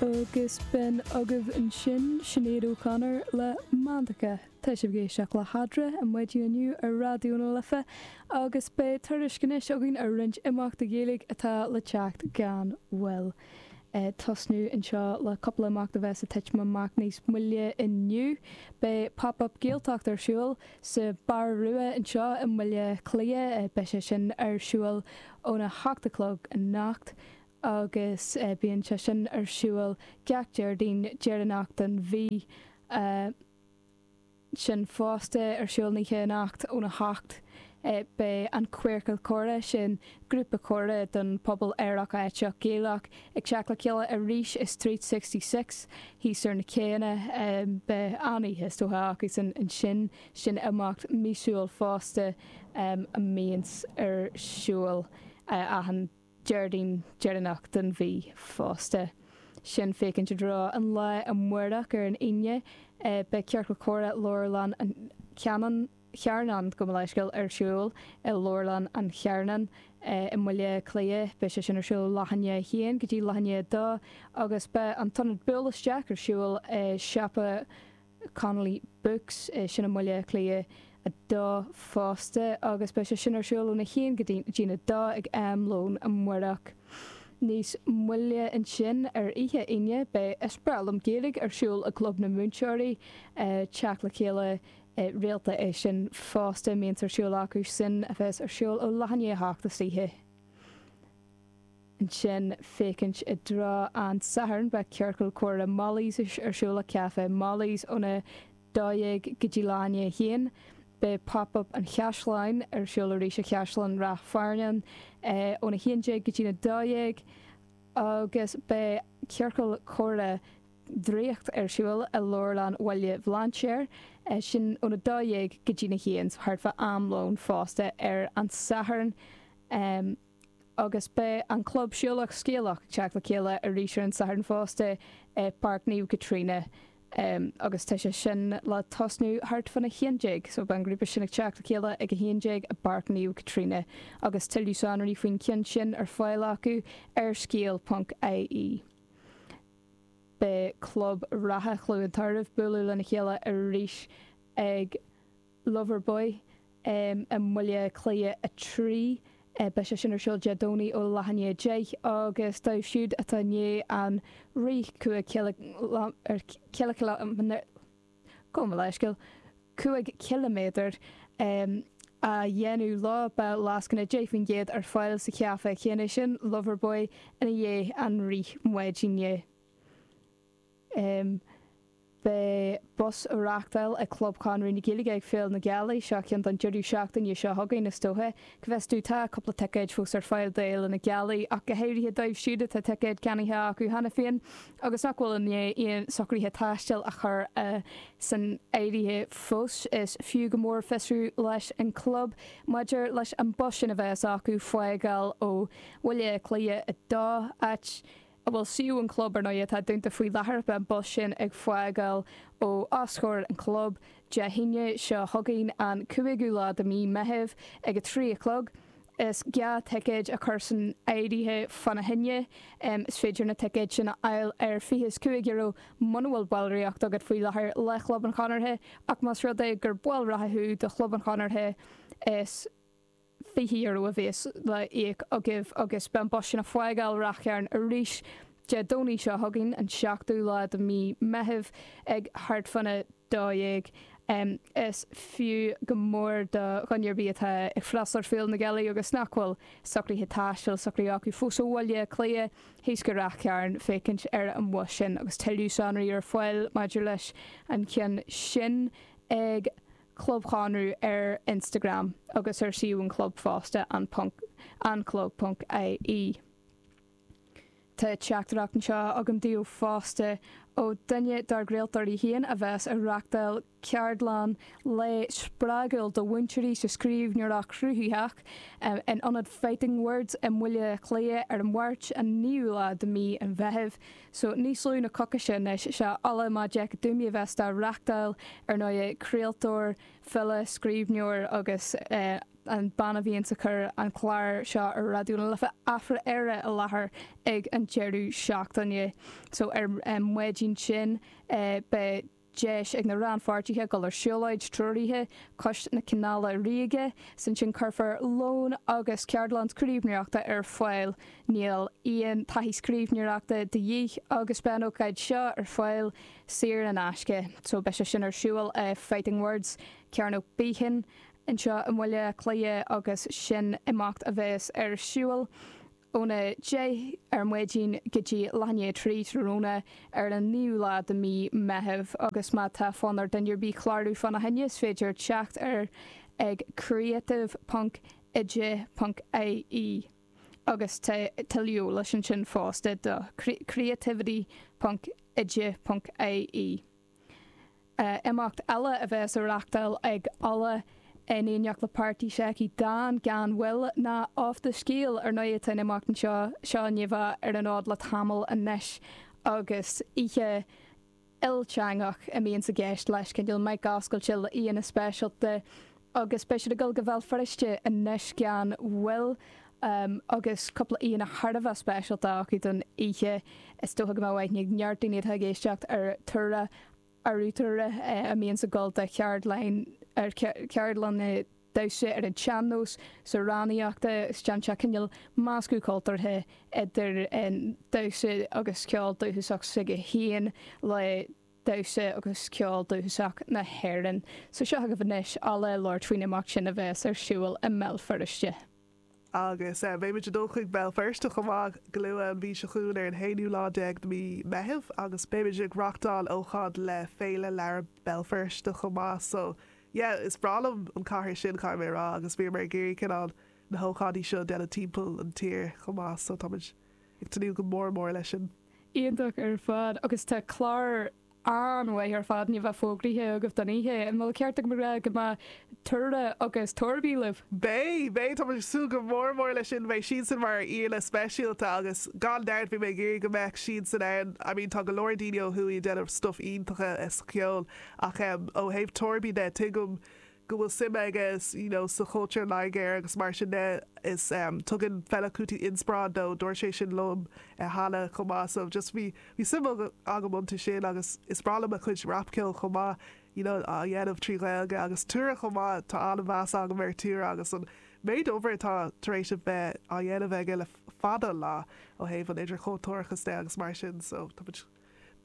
Agus b'in agaibh ansin Sinéad O'Connor le Mandinka. Tá sibh ag éisteacht le hEadra ar maidin inniu ar Raidió na Life agus beidh tuairisc anois againn ar roinnt imeachtaí Gaeilge atá le teacht gan mhoill. Ag tosnú anseo le cúpla imeacht a bheas ag titim amach níos moille inniu. Beidh Pop Up Gaeltacht ar siúl sa Bar Rua anseo i mBaile Cliath. Beidh sé sin ar siúl óna hocht a chlog anocht. agus bíonn sé sin ar siúl gach Déardaoin deireanach den mhí. Ansin fosta ar siúl oíche anocht óna hocht, beidh an Queercal Comhrá, sin grúpa comhrá don phobal aerach aiteach Gaelach, ag teacht le chéile arís i Street Sixty Six thíos ar na céanna. Beidh an-oíche is dócha acusan ansin. Sin imeacht míosúil fosta a mbíonns ar siúl achan. Déardaoin deireanach den mhí fosta. Ansin féachaint i dtreo an lae amáireach, ar an Aoine, beidh Ciorcal Comhrá Leabharlann an Charnáin, gabh mo leithscéal, ar siúl i Leabharlann an Charnáin i mBaile Cliath. Beidh sé sin ar siúl leath i ndiaidh a haon go dtí leath i ndiaidh a dó agus beidh an t-ionad buail isteach ar siúl i Siopa Connolly Books, é sin i mBaile Átha Cliath 2 fosta agus beidh sé sin ar siúl ón 1 go dtí'n 2 ag am lón amáireach. Níos moille ansin ar oíche Aoine beidh Is breá liom Gaeilge ar siúl i gClub na Múinteoirí, teacht le chéile rialta é sin fosta a mbíonns ar siúl acu sin a bheas ar siúl ó leath i ndiaidh a hocht istoíche. ansin féachaint i dtreo an tSathairn. Beidh ciorcal comhrá Molly's ar siúl i Café Molly's óna dó dhéag go dtí leath i ndiaidh a haon. Beidh Pop Up an Chaisleáin ar siúl arís sa Chaisleán Ráth Fearnáin ón a haon déag go dtí na dó dhéag agus beidh ciorcal comhrá Draíocht ar siúl i Leabharlann Bhaile Bhlainséir, sin óna dó dhéag go dtí na haon, thart fá am lón fosta ar an Satharn. agus beidh an Club Siúlach Scéalach ag teacht le chéile arís ar an Satharn fosta i bPáirc Naomh Caitríona agus tá sé sin le tosnú thart fán 11:00 so beidh an grúpa sin ag teacht le chéile ag 11:00 i bPáirc Naomh Caitríona agus tuilleadh sonraí faoin cheann sin ar fáil acu ar scéal ponc ie Beidh Club Reatha Chluain Tarbh ag bualadh lena chéile arís ag Loverboy, em. i mBaile Cliath 3. Beidh sé sin ar siúl Dé Domhnaigh ó leath i ndiaidh a deich agus dóibh siúd atá i ndiaidh an rith cúig chile, gabh mo leithscéal, cúig chiliméadar, em. a dhéanamh lá beidh lascaine deich faoin gcéad ar fáil sa chaife chéanna sin, Loverboy, i ndiaidh an rith maidine. Beidh bus á reáchtáil ag Club Chonradh na Gaeilge ag Féile na Gealaí seo cionn don deireadh seachtaine seo chugainn, is dócha. Go bhfios domh, tá cúpla ticéad fós ar fáil d'Fhéile na Gealaí, ach go háirithe dóibh siúd atá ticéad ceannaithe acu cheana féin agus nach bhfuil i ndiaidh aon socruithe taistil a chur san áirithe fós. Is fiú go mór fiosrú leis an gClub maidir leis an bus sin a bheas ag fágáil ó Bhaile Átha Cliath 2, áit a. a bhfuil suíomh an chlub, ar ndóigh, atá dúnta faoi láthair, beidh an bus sin ag fágáil ó os comhair an chlub Dé hAoine seo chugainn, an cúigiú lá de mhí Meitheamh, ag a trí a chlog. Is gá ticéid a chur san áirithe fána choinne. Is féidir na ticéid sin a fháil ar fiche is cúig euro, muna bhfuil ballraíocht agat faoi láthair le Chlub an Chonartha, ach más rud é gur ball reatha thú de Chlub an Chonartha, is. €20 a bheas le híoc agaibh agus beidh an bus sin ag fágáil Ráth Chairn arís Dé Domhnaigh seo chugainn, an 7ú lá de mhí Meitheamh, ag thart fán 12, em. Is fiú go mór do dhuine ar bith atá ag freastal ar Fhéile na Gealaí agus nach bhfuil socruithe taistil socraithe acu fós ó Bhaile Átha Cliath thíos go Ráth Chairn féachaint ar an bhus sin agus tuilleadh sonraí ar fáil maidir leis an cheann sin ag clubchonradh ar Instagram agus ar shuíomh an chlub fosta an club ponc ie Tá teachtaireacht anseo agam daoibh fosta ó duine dár gcraoltóirí féin a bheas ag reáchtáil ceardlann lae spreagúil do mhúinteoirí sa scríbhneoireacht chruthaitheach in Ionad Fighting Words i mBaile Átha Cliath ar an Mháirt an 9ú lá de mhí an Mheithimh. So, níos lú ná coicís anois, is í Ola Majekodunmi a bheas dá reáchtáil, ar ndóighe, craoltóir, file, scríbhneoir agus an bean a bhíonns ag cur an clár seo ar Raidió na Life Afra Éire i láthair ag an deireadh seachtaine. So, ar an maidin sin, beidh. deis ag na rannpháirtithe dul ar siúlóid treoraithe cois na Canála Ríoga, 's ansin cuirfear lón agus ceardlann scríbhneoireachta ar fáil. Níl aon taithí scríbhneoireachta de dhíth agus beidh an ócáid seo ar fáil saor in aisce. So beidh sé sin ar siúl i Fighting Words, Cearnóg Behan, anseo i mBaile Átha Cliath agus sin imeacht a bheas ar siúl óna deich ar maidin go dtí leath i ndiaidh a trí tráthnóna ar an naoú lá de mhí Meitheamh agus má tá fonn ar duine ar bith clárú fána choinne is féidir teacht ar ag creative ponc id ponc ie agus tá tuilleadh eolais ansin fosta do creativity ponc id ponc ie. imeacht eile a bheas á reachtáil ag Ola in éineacht le páirtí s'aici gan gan mhoill ná Ochtó Scéal. Ar ndóigh tá an imeacht seo i ndiaidh a bheith ar an fhód le tamall anois agus oíche ilteangach a bíonn sa gceist leis, cineál mic oscailte le aíonna speisialta. agus beidh siad ag dul go Béal Feirste anois gan mhoill agus cúpla aíonna thar a bheith speisialta acu don oíche. Is dócha go mbeadh aithne ag neart daoine atá ag éisteacht ar Tura Arutura a mbíonns ag gabháil de cheardlann, ceardlanna damhsa ar an tsean-nós go hiondúil agus déanann sé cineál meascadh cultúrtha idir damhsa agus ceol dúchasach s'aige féin le damhsa agus ceol dúchasach na hÉireann. So seo agaibh anois Ola ag labhairt faoin imeacht sin a bheas ar siúl i mBéal Feirste. Agus beidh muid ag dul chuig Béal Feirste chomh maith go luath an mhí seo chugainn ar an haonú lá déag de mhí Meitheamh agus beidh muid ag reachtáil ócáid le Féile Leabhar Bhéal Feirste chomh maith. So yeah is breá liom an chathair sin caithfidh mé a rá agus bhíomar ag iarraidh cineál na hócáidí seo a dhéanamh timpeall an tír chomh maith so tá muid ag tnúth go mór mór leis sin. Iontach ar fad agus tá clár an-mhaith ar fad i ndiaidh a bheith fógraithe agaibh don oíche. An bhfuil ceart agam a rá go mbeidh Tura agus Torby libh? Beidh, beidh, tá muid ag súil go mór mór leis sin. Beidh siadsan mar aíonna speisialta agus gan dabht bhí mé ag iarraidh go mbeadh siadsan ann. I mean tá go leor daoine ó thuaidh ag déanamh stuff iontacha sa cheol ach em ó thaobh Torby de tuigim go bhfuil suim aige you know sa chultúr Nigéir agus mar sin de is em tugann Fela Kuti inspioráid dó, dúirt sé sin liom eh cheana chomh maith so just bhí bhí suim agam agam iontu sin agus is breá liom a chuid rapcheoil chomh maith you know á dhéanamh trí Ghaeilge agus Tura chomh maith tá an-mheas agam ar Tura agus an méid obair atá tar éis a bheith á dhéanamh aige le fada an lá ó thaobh an idirchultúrachas de agus mar sin so tá muid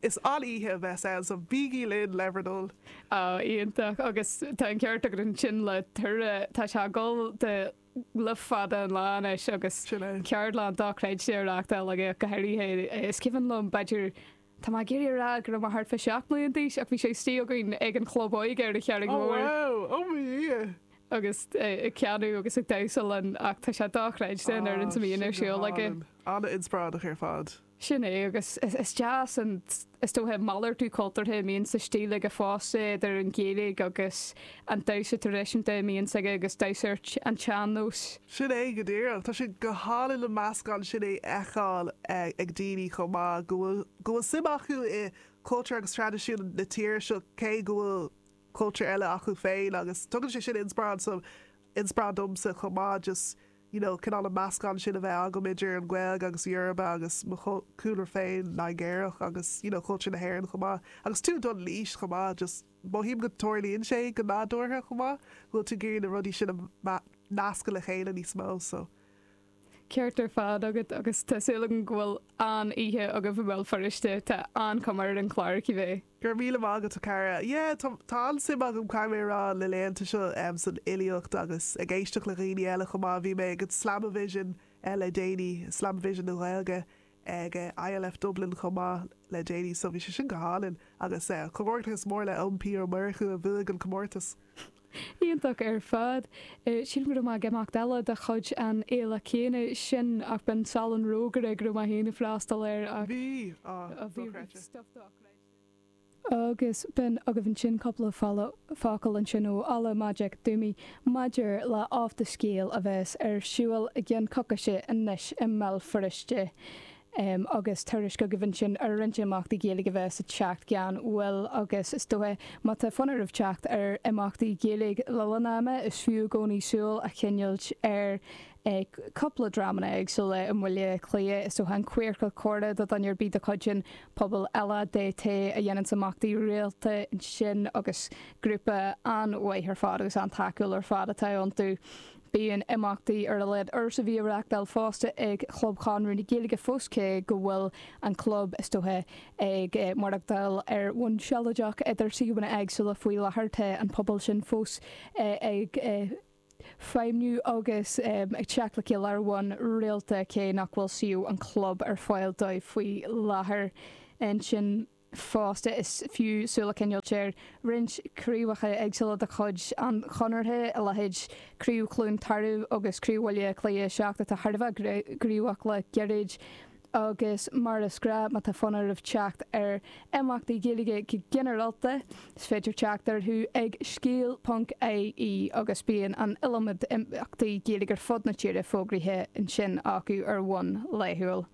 Is an-oíche a bheas ann so bígí linn le bhur dtoil! Á, iontach agus tá an ceart agat ansin le Tura, tá sé ag dul de le fada an lá anois agus Sin é. ceardlanna dochreidte a reáchtáil aige go háirithe, is cuimhin liom, b'fhéidir, tá mé ag iarraidh a rá go raibh mé thart fá seacht mbliana d'aois ach bhí sé istigh againn ag an chlub óige ar an Charraig Oh Mhór wow, oh mo dhia! agus eh, ag canadh agus ag damhsa linn ach tá sé dochreidte an oiread a mbíonn ar siúl aige. An-inspioráideach ar fad. Sin é, agus is deas an, is dócha, malartú cultúrtha a bhíonns sa stíl aige fosta idir an Ghaeilge agus an damhsa traidisiúnta a bhíonns aige agus damhsa ar an tsean-nós. Sin é go díreach. Tá sé go hálainn an meascán sin a fheiceáil ag daoine chomh maith, go bhfuil, go bhfuil suim acu i gcultúr agus traidisiún na tíre seo cé go bhfuil cultúr eile acu féin agus tugann sé sin inspioráid, inspioráid domsa chomh maith just. you know cineál an meascán sin a bheith agam idir an Ghaeilge agus Yoruba agus mo chúlra féin Nigéarach agus you know cultúr na hÉireann chomh maith agus tú ag dul in aois chomh maith just mothaím go dtarlaíonn sé go nádúrtha chomh maith go bhfuil tú ag iarraidh na rudaí sin a nascadh le chéile níos mó so Ceart ar fad agat agus tá súil agam go mbeidh an-oíche agaibh i mBéal Feirste, tá an-chuma ar an chlár cibé. Go raibh míle maith agat a chara. Yeah, tá, tá an-suim agam, caithfidh mé a rá, na laethanta seo, em, san fhilíocht agus ag éisteacht le dhaoine eile chomh maith. Bhí mé ag an Slamavision, eh, le déanaí, Slamavision na Gaeilge ag, eh, ILF Dublin chomh maith le déanaí so bhí sé sin go hálainn agus, eh, comhghairdeachas mór le Eoin P. Ó Murchú a bhuaigh an comórtas. Iontach ar fad. Eh, sílim go raibh mé ag imeacht eile de chuid na féile céanna sin ach b'in Salon Rógaire go raibh mé féin ag freastal air ach, Bhí! Á, eh, bhí stuff dochreidte. Agus b'in agaibh ansin cupla focal ansin ó Ola Majekodunmi maidir le After Scéal a bheas ar siúl i gceann coicíse anois i mBéal Feirste agus tuairisc agaibh ansin ar roinnt imeachtaí Gaeilge a bheas ag teacht gan mhoill agus is dóiche má tá fonn oraibh teacht ar imeachtaí Gaeilge le linn an ama is fiú i gcónaí súil a choinneáilt ar cupla dreamanna éagsúla i mBaile Átha Cliath. Is dócha an Queercal Comhrá do dhuine ar bith de chuid an phobail LADT a dhéananns imeachtaí rialta ansin agus grúpa an-mhaith ar fad agus an-tacúil ar fad atá iontu. Bíonn imeachtaí ar a laghad uair sa mhí á reachtáil fosta ag Chlub Chonradh na Gaeilge fós cé go bhfuil an club is dócha ag maireachtáil ar bhonn sealadach idir suíomhanna éagsúla faoi láthair tá an pobal sin fós ag feidhmniú agus ag teacht le chéile ar bhonn rialta cé nach bhfuil suíomh an chlub ar fáil dóibh faoi láthair. Ansin fosta is fiú súil a choinneáilt ar roinnt craobhacha éagsúla de chuid an Chonartha, a leithéid Craobh Chluain Tarbh agus Craobh Bhaile Átha Cliath 7 atá thar a bheith gníomhach le gairid. agus mar is gnách má tá fonn oraibh teacht ar imeachtaí Gaeilge go ginearálta is féidir teacht orthu ag scéal ponc ie agus bíonn an iliomad imeachtaí Gaeilge ar fud na tíre fógraithe ansin acu ar bhonn laethúil.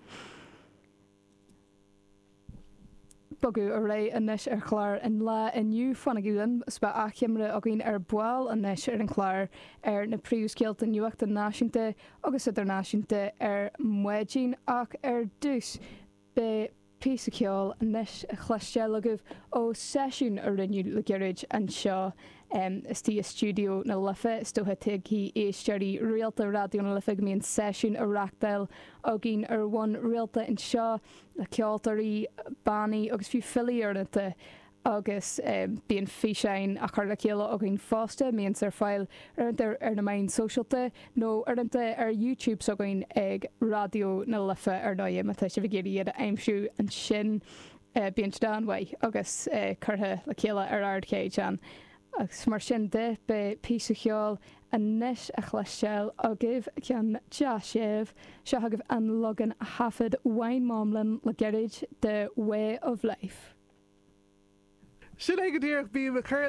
Bogadh ar aghaidh anois ar chlár an lae inniu fanaigí linn is beidh achoimre againn ar ball anois ar an gclár ar na príomhscéalta nuachta náisiúnta agus idirnáisiúnta ar maidin ach ar dtús beidh píosa ceoil anois le cloisteáil agaibh ó seisiún a rinneadh le gairid anseo istigh i stiúideo na Life is dócha tuigfidh éisteoirí rialta Raidió na Life go mbíonn seisiúin á reachtáil againn ar bhonn rialta anseo. le ceoltóirí, bannaí agus fiú filí uaireanta agus bíonn físeáin á chur le chéile againn fosta, a bhíonn ar fáil uaireanta ar na meáin sóisialta nó uaireanta ar YouTube s'againn ag Raidió na Life ar ndóigh má tá sibh ag iarraidh iad a aimsiú ansin bíonn siad an-mhaith agus curtha le chéile ar ardchaighdeán. agus mar sin de beidh píosa ceoil anois le cloisteáil agaibh, ceann deas séimh, seo agaibh an logan a thaifead Wayne Momlin le gairid do Way of Life. Sin é go díreach, bím ag cur.